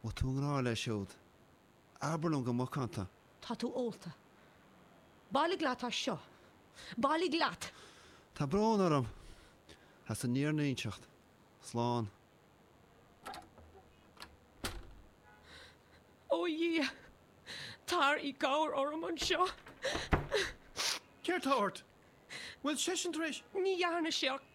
An bhfuil tú i ngrá leis siúd, abair liom go macánta. Tá tú ólta. Bailigh leat as seo. Bailigh leat! Tá brón orm as an mí-ionracas. Slán. Ó Dhia! Tar i gcabhair orm anseo. Céard atá ort? Bhfuil seisean tar éis. Ní dhearna sé ach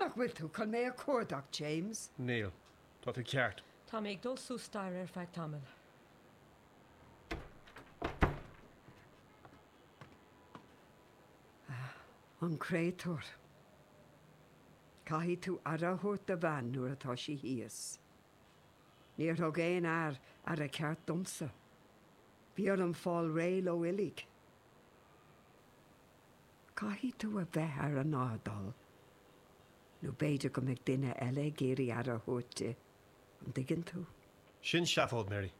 Nach bhfuil tú chun mé a chuardach, James? Níl. Tá tú ceart. Tá mé ag dul suas staighre ar feadh tamaill. Ah, an créatúr. Caithfidh tú aire a thabhairt do bhean nuair atá sí thíos. Níor thug aon fhear aire cheart domsa. Bhí orm fáil réidh leo uilig. Caithfidh tú a bheith ar an airdeall nó b'fhéidir go mbeidh duine eile ag iarraidh aire a thabhairt di, an dtuigeann tú? Sin seafóid, Mary.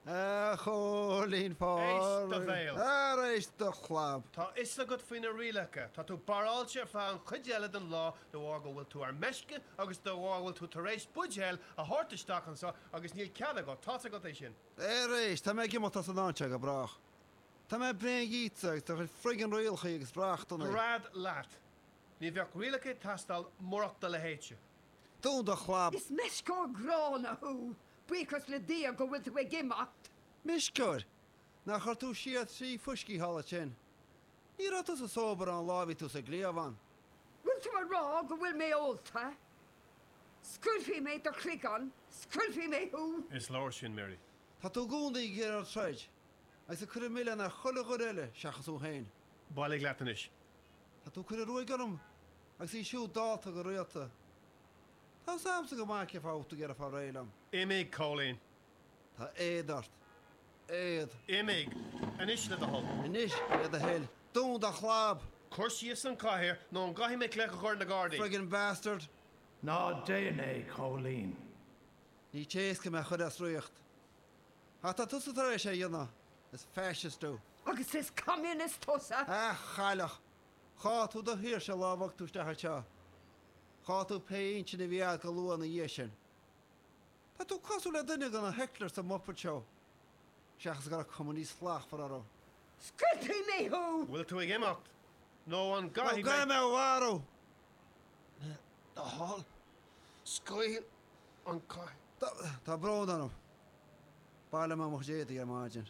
A Chóilín éist do bhéal. Ara éist do chlab. Tá a fhios agat faoi na rialacha. Tá tú barráilte ar feadh an chuid eile den lá de bharr go bhfuil tú ar meisce agus de bharr go bhfuil tú tar éis buidéal a thabhairt isteach anseo agus níl cead agat, tá's agat é sin. Ara éist, tá mé ag imeacht as an áit seo go brách. Tá mé bréan díotsa agus do chuid friggin rialacha agus reachtanna. Gread leat. Ní bheadh rialacha ag teastáil murach do leithéidse. Dún do chlab. Is meisceoir gránna thú, buíochas le Dia go bhfuil tú ag imeacht. Meisceoir? Nár chuir tú siar trí fuisce ó shin? Ní raibh tusa sóbráilte ón lá a bhí tú sa gcliabhán. Bhfuil tú ag rá go bhfuil mé ólta? Scaoilfidh mé do chloigeann, scoiltfidh mé thú! Is leor sin, Mary. Tá tú i gcónaí ag iarraidh troid agus ag cur an mhilleáin ar chuile dhuine eile seachas thú féin. Bailigh leat anois. Tá tú ag cur an ruaig orm Agus í siúd ólta go rialta. Tá seans go maith go bhfuil tú ag iarraidh fáil réidh liom. Imigh, Cóilín. Tá éad ort. Éad. Imigh. Anois le do thoil. Anois le do thoil. Dún do chlab! Cuir síos an chathaoir nó an gcaithfidh mé glaoch a chur ar na gardaí? Friggin bastard. Ná déan é, Cóilín. Ní téasca mé a chur as riocht. Ach tá tusa tar éis é a dhéanamh. Is Fascist tú. Agus is Communist tusa. A chailleach. Chaill tú do shaoirse an lá a tháinig tú isteach anseo. Chaill tú pé inchinn a bhí agat go luath ina dhiaidh sin. Tá tú cosúil le duine de na hecklers sa Muppet Show, seachas go raibh cuma níos slachtmhar orthu. Scriosfaidh mé thú! Bhfuil tú ag imeacht? Nó an gcaithfidh mé. Nó an gcaithfidh mé é a mharú? Le do thoil, scaoil an cait. Tá brón orm. B'fhearr liom mo chuid éadaigh ar maidin.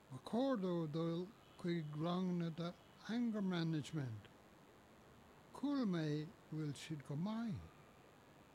Ba chóir dó dul chuig ranganna de Anger Management. Chuala mé go bhfuil siad go maith.